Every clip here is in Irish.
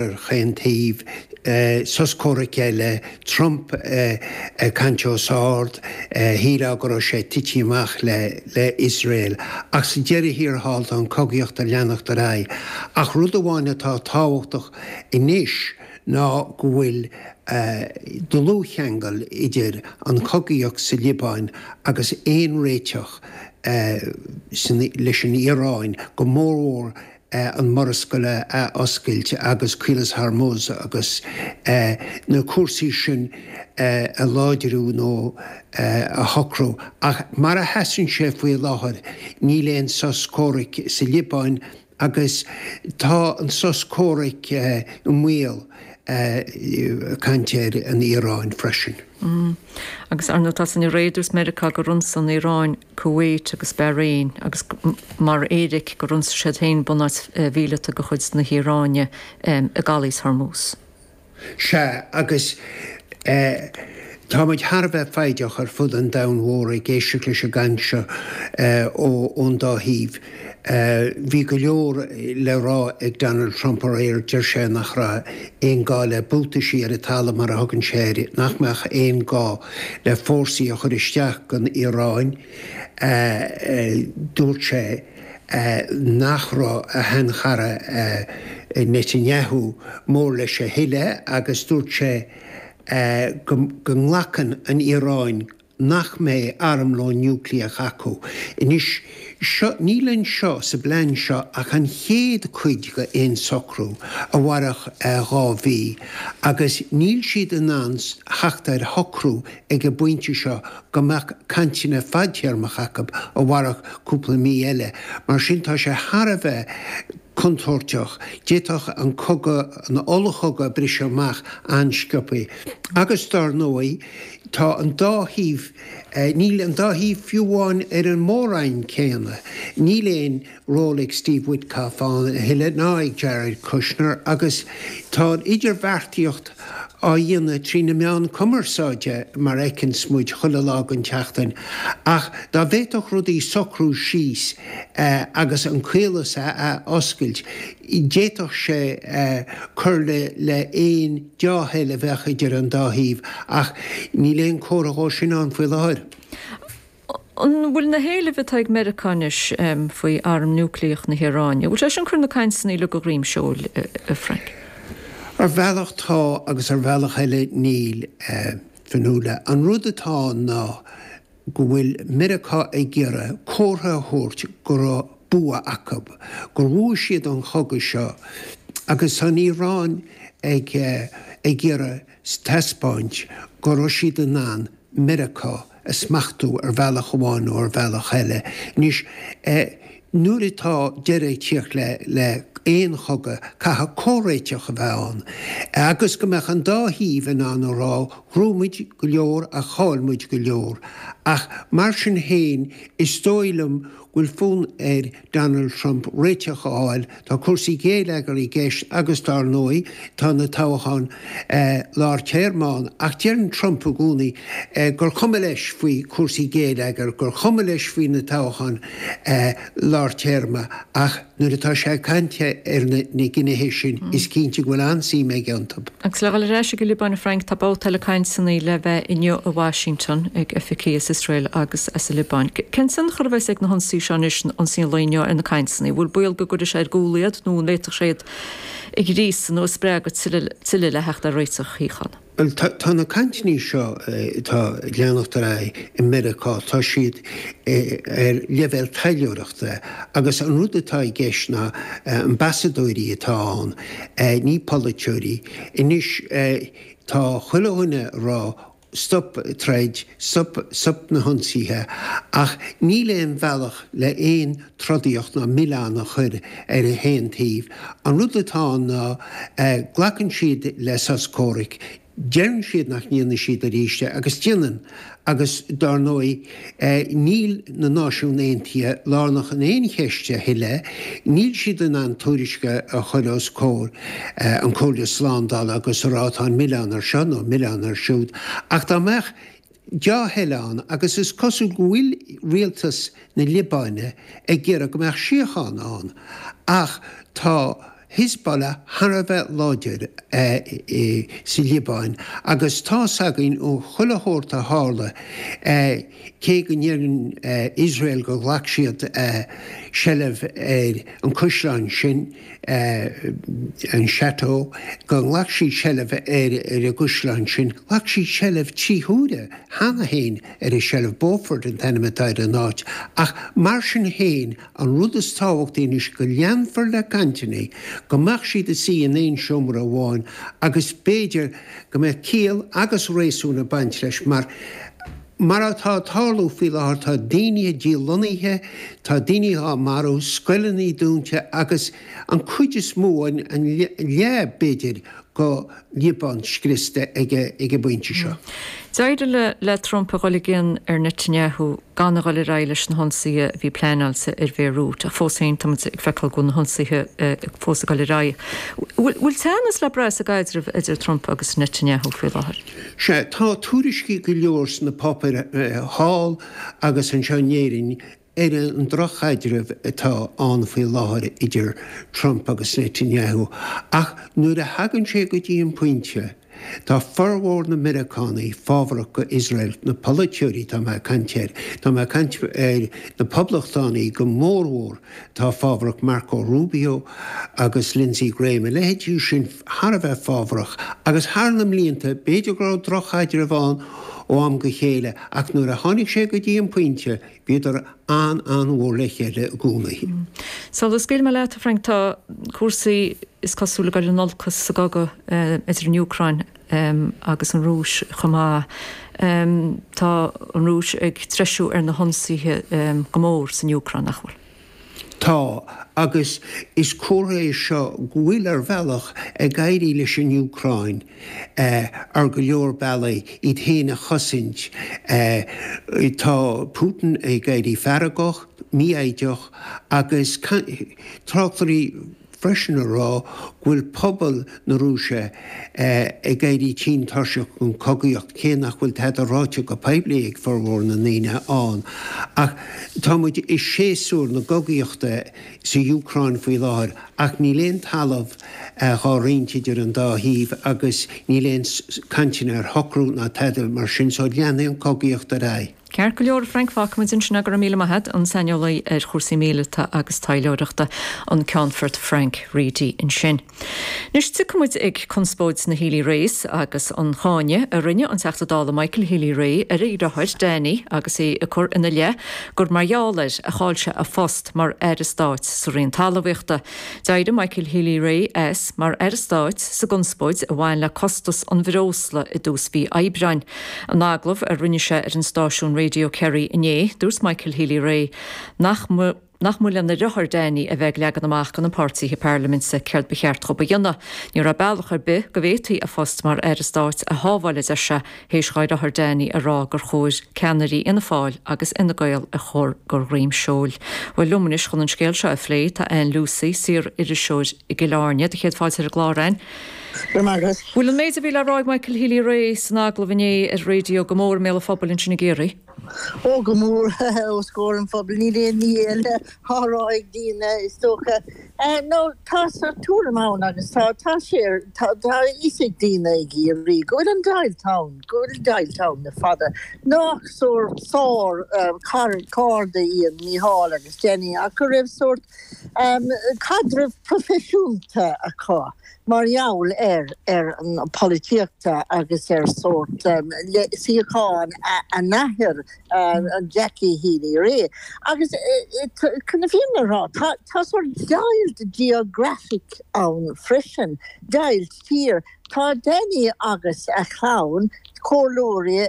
ar chaon taobh, sos comhraic le Trump ag caint os ard, shíleá go raibh sé ag titim amach le Iosrael, ach sa deireadh thiar thall tá an cogaíocht ag leanacht ar aghaidh. Ach rud amháin atá tábhachtach anois ná go bhfuil dlúthcheangal idir an chogaíocht sa Liobáin agus aon réiteach leis an Iaráin, go mórmhór an Mhurascaill a oscailt agus Caolas Hormuz agus na cúrsaí sin a láidriú nó a shocrú. Ach mar a sheasann sé faoi láthair, níl aon sos comhraic sa Liobáin agus tá an sos comhraic i mbaol. Ag caint ar an Iaráin freisin. Agus, ar ndóigh, tar éis aréir, dúirt Meiriceá gur ionsaigh an Iaráin. Kuwait agus Bahrain, agus mar éiric gur ionsaigh siad féin bunáit mhíleata de chuid na hIaráine i gCaolas Hormuz. Sea, agus tá muid thar a bheith foighdeach ar fud an domhain mhóir ag éisteacht leis an gcaint seo ón dá thaobh. Bhí go leor le rá ag Donald Trump aréir. Deir sé nach raibh aon gá le 'buataisí ar an talamh' mar a thugann sé air, nach mbeadh aon gá le fórsaí a chur isteach gon Iaráin, dúirt sé nach raibh a shean-chara Netanyahu mór leis a thuilleadh agus dúirt sé go nglacann an Iaráin nach mbeidh armlón núicléach acu. Anois, seo, níl anseo, sa bplean seo, ach an chéad cuid go aon socrú a mhairfeadh dhá mhí, agus níl siad in ann theacht ar shocrú ag an bpointe seo go mbeadh cainteanna fadtéarmacha acu a mhairfeadh cúpla mí eile. Mar sin, tá sé thar a bheith contúirteach, d'fhéadfadh an cogadh, an ollchogadh briseadh amach an-scioptha. Agus, dar ndóigh, tá an dá thaobh, níl an dá thaobh fiú amháin ar an mór-roinn céanna. Níl aon ról ag Steve Witkoff ann a thuilleadh ná ag Jared Kushner agus tá an idirbheartaíocht, á dhéanamh trí na meáin chumarsáide mar a fheiceanns muid chuile lá den tseachtain, ach dá bhféadfadh rudaí socrú síos agus an caolas a oscailt, d'fhéadfadh sé cur le haon deá-thoil a bheadh idir an dá thaobh, ach níl aon chomhartha dó sin ann faoi láthair. An bhfuil na héilimh atá ag Meiriceá anois faoi arm núicléach na hIaráine, an bhfuil sé sin ag cur na cainteanna faoin ola go droim seoil, a Frank? Ar bhealach tá agus ar bhealach eile níl, a Fionnuala. An rud atá ná go bhfuil Meiriceá ag iarraidh comhartha a thabhairt go raibh bua acu, gur bhuaigh siad an cogadh seo agus tá an Iaráin ag iarraidh taispeáint go raibh siad in ann Meiriceá a smachtú ar bhealach amháin nó ar bhealach eile. Anois, nuair atá deireadh ag teacht le aon chogadh, caithfidh comhréiteach a bheith ann agus go mbeadh an dá thaobh in ann a rá, Bhuaigh muid go leor ach chaill muid go leor. Ach mar sin féin, is dóigh liom go bhfuil fonn ar Donald Trump réiteach a fháil. Tá cúrsaí géilleagair i gceist agus, dár ndóigh, tá na toghcháin lár téarma ann. Ach deireann Trump i gcónaí gur chuma leis faoi chúrsaí géilleagair, gur chuma leis faoi na toghcháin lár téarma. Ach nuair atá sé ag caint ar na gnéithe sin, is cinnte go bhfuil an-suim aige iontu. Agus le dhul ar ais ag an Liobáin, a Frank, tá babhta eile cainteanna le bheith inniu i Washington ag oifigigh as Iosrael agus as an Liobáin. Cén tionchar a bheas ag na hionsaí seo anois, na hionsaí nua inniu, ar na cainteanna? An bhfuil baol go gcuirfidh sé ar gcúl iad nó an bhféadfadh sé iad a ghríosadh nó a spreagadh tuilleadh le theacht ar réiteach síochána? Bhuel, tá na cainteanna seo atá ag leanacht ar aghaidh i Meiriceá, tá siad ar leibhéal taidhleoireachta agus an rud atá i gceist ná ambasadóirí atá ann ní polaiteoirí. Anois tá chuile dhuine a rá stop troid, stop, stop na hionsaithe, ach níl aon bhealach le aon trodaíocht ná an milleán a chur ar aon taobh. An rud atá ann ná glacann siad le sos comhraic, Deireann siad nach ndéanfaidh siad arís é, agus déanann. Agus dár ndóigh, níl na Náisiún Aontaithe lárnach in aon cheist a thuilleadh, níl siad in ann tuairisc a chur os comhair an Comhairle Slándála agus a rá tá an milleán ar seo nó an milleán ar siúd, ach dá mbeadh, dea-thoil ann agus is cosúil go bhfuil rialtas na Liobáine ag iarraidh go mbeadh síocháin ann ach tá Hizbollah thar a bheith láidir sa Liobáin agus tá's againn ó chuile shórt a tharla cé go ndeireann Iosrael go ghlac siad seilbh ar an caisleán sin an chateau, gur ghlac siad seilbh air ar an gcaisleán sin. Ghlac siad seilbh trí huaire cheana féin ar an tseilbh, Beaufort an t-ainm atá ar an áit, ach mar sin féin, an rud is tábhachtaí anois go leanfar le cainteanna, go mbeadh siad ag suí in aon seomra amháin, agus b'fhéidir go mbeadh ciall agus réasún ag baint leis, mar. Mar atá ag tarlú faoi láthair, tá daoine á ndíláithriú, tá daoine á marú, scoileanna dúnta agus an chuid is mó, an leath b'fhéidir, den Liobáin scriosta ag an bpointe seo. D'éirigh le Trump a dhul i gcion ar Netanyahu gan a dhul ar aghaidh leis na hionsaithe a bhí pleanáilte ar Bhéirút, ach fós féin táimid ag feiceáil go bhfuil na hionsaithe fós ag dul ar aghaidh. Bhfuil teannas le brath sa gcaidreamh idir Trump agus Netanyahu faoi láthair? Sea, tá tuairiscí go leor sna páipéir thall agus anseo in Éirinn ar an drochchaidreamh atá ann faoi láthair idir Trump agus Netanyahu ach nuair a thagann sé go dtí an pointe, tá formhór na Meiriceánaigh fábharach go Iosrael, na polaiteoirí tá mé ag caint air, tá mé ag caint ar na poblachtánaigh go mórmhór atá fábharach, Marco Rubio agus Lindsey Graham, a leithéidí sin. thar a bheith fábharach, agus thar na mblianta, b'fhéidir go raibh droch-chaidreamh ann ó am go chéile, ach nuair a tháinig sé go dtí an pointe, bhíodar an-an-mhór le chéile i gcónaí. Sula scaoilfidh mé leat, a Frank, tá cúrsaí, is cosúil, ag dul in olcas sa gcogadh idir an Úcráin agus an Rúis chomh maith. Tá an Rúis ag treisiú ar na hionsaithe go mór san Úcráin, nach bhfuil? Tá, agus is comhartha é seo go bhfuil, ar bhealach, ag éirí leis an Úcráin ar go leor bealaí iad féin a chosaint. Tá Putin ag éirí feargach, mífhoighdeach agus tráchtairí freisin ag rá go bhfuil pobal na Rúise ag éirí tinn tuirseach den chogaíocht, cé nach bhfuil tada ráite go poiblí ag formhór na ndaoine ann. Ach tá muid i séasúr na cogaíochta sa Úcráin faoi láthair, ach níl aon talamh dhá roinnt idir an dá thaobh agus níl aon cainteanna ar shocrú ná tada mar sin, so leanfaidh an chogaíocht ar aghaidh. Ceart go leor, a Frank, fágfaimid ansin é, go raibh míle maith agat, an saineolaí ar chúrsaí míleata agus taidhleoireachta, an Ceannfort Frank Reidy ansin. Anois, tiocfaimid ag conspóid na Healy-Raes agus an cáineadh a rinne an Teachta Dála Michael Healy-Rae ar a dheartháir, Danny, agus é ag cur ina leith gur mar gheall air a chaill sé a phost mar Aire Stáit sa Roinn Talmhaíochta. D'éirigh Michael Healy-Rae as mar Aire Stáit sa gconspóid a bhain le costas an bhreosla i dtús mhí Aibreáin. In agallamh a rinne sé ar an stáisiún Radio Kerry inné, dúirt Michael Healy-Rae nach mba lena dheartháir Danny a bheith ag leagan amach do na páirtithe parlaiminte céard ba cheart dóibh a dhéanamh. Ní raibh bealach ar bith go bhféadfaí a phost mar Aire Stáit a shábháil a deir sé théis dhá dheartháir Danny a rá gur chóir ceannairí Fhianna Fáil agus Fhine Gael a chur de dhroim seoil. Bhuel liom anois chun an scéal seo a phlé, tá Ann Lucey, saor-iriseoir i gCill Airne, do chéad fáilte ar an gclár Ann. Bhfuil an méid a bhí le rá ag Michael Healy-Rae san agallamh inné ar raidió go mór i mbéal an phobail ansin i gCiarraí. Ó, go mór, os comhair an phobail, níl aon ní eile á rá ag daoine, is dócha. Now tá sórt tuairim ann agus tá, tá sé, tá a fhios ag daoine i gCiarraí go bhfuil deighilt ann, go bhfuil deighilt ann le fada. Nach sórt sár cairde iad Mícheál agus Danny ach go raibh sórt caidreamh proifisiúnta acu. mar gheall ar ar polaitíocht agus ar sórt suíochán a n-athair, Jackie Healy Rae. Agus chun na fírinne a rá, tá sórt deighilt geographic ann freisin, deighilt tír. Tá Danny agus a chlann, comhairleoirí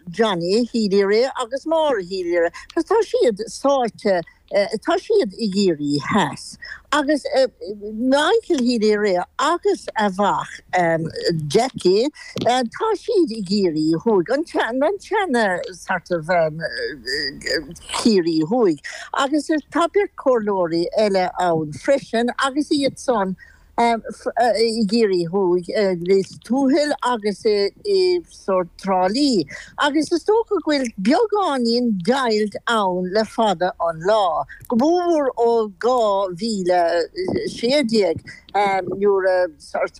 Johnny Healy Rae agus Maura Healy Rae, agus tá siad sáite Tá siad i gCiarraí theas, agus Michael Healy-Rae agus a mhac Jackie, tá siad i gCiarraí thuaidh, an tseana sort of Ciarraí thuaidh, agus tá beirt comhairleoirí eile ann freisin agus iad san i gCiarraí Thuaidh, i Lios Tuathail agus i sort Trá Lí, agus is dócha go bhfuil beagáinín deighilt ann le fada an lá, go mórmhór ó 2016 nuair a sort.